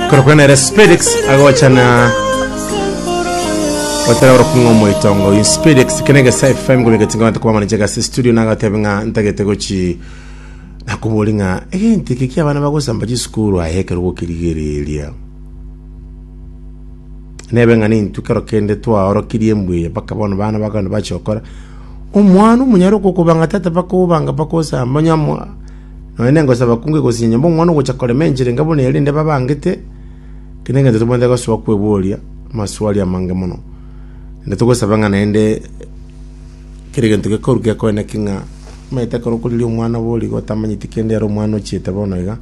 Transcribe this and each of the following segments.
Korokwa nere Spedix agochana gotera orokung'o moitongo in Spedix kene gesa FM gobe getinga bantu kwa manager gasi studio na gatebe ng'a ntagete gochi nakobori ng'a egenti eke kia bana bagosamba chisukuru aye ekero gokirigereria nebe ng'a nintu kero kende twaorokirie mbuya mpaka bono bana bagana bachokora omwana omonyare okokoba ng'a tata bakobanga bakosamba nyamo Nonya nengosaba kunge gose nyanyomba omwana ogocha korema enchera enga buna erinde babangete, kera egento tobwenerete gosoa kweboria amaswali amange mono. Naende togosaba ng'a naende kera egento gekorwa gekoeneke ng'a omanyete ekero okoriria omwana borigo otamanyeti kende ere omwana ochiete bono iga.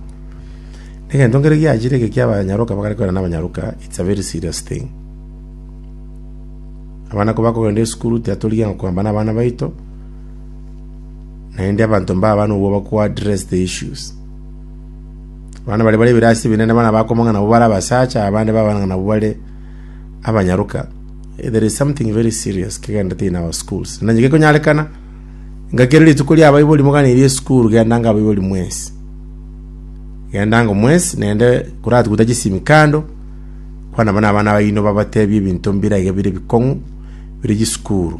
Egento nkere giachire eke kia abanyaroka bakare korana na abanyaroka it's a very serious thing. Abana kobakogenda esukuru tibatorigia ng'a kogamba na abana baito. Naende abanto mbaba nobwoba kwa dressed issues. Abana baria bare ebirasi ebinene buna bakomanya nabwo bare abasacha, abande babana nabwo bare abanyaroka. There is something very serious kegendete in our schools. Na onye gekonyarekana, inga kere rituko ria abaibori moganirie esukuru, gendanga abaibori mwensi. Gendanga omwensi, naende koratuguta chisimi kando, kwana buna abana baino babatebie ebinto mbire aiga bire ebikong'u, bire chisukuru.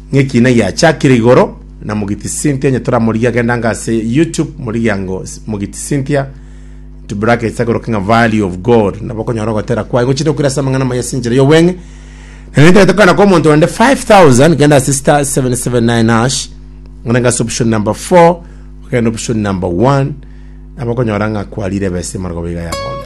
Ng'ekina giachakire igoro na Mogiti Cynthia onye toramorigie agende ange ase YouTube morigie ango Mogiti Cynthia into brackets agoroke ng'a value of God nabo okonyora ogotera kwaye gochire okwira ase amang'ana amaya ase enchera y'obweng'e na netaete kogana kwa omonto onde 5000 genda ase star 779 hash ng'ana ng'ase option number 4 ogende option number 1 nabo okonyora ng'a kwarire ebesa emaragoba iga yagonya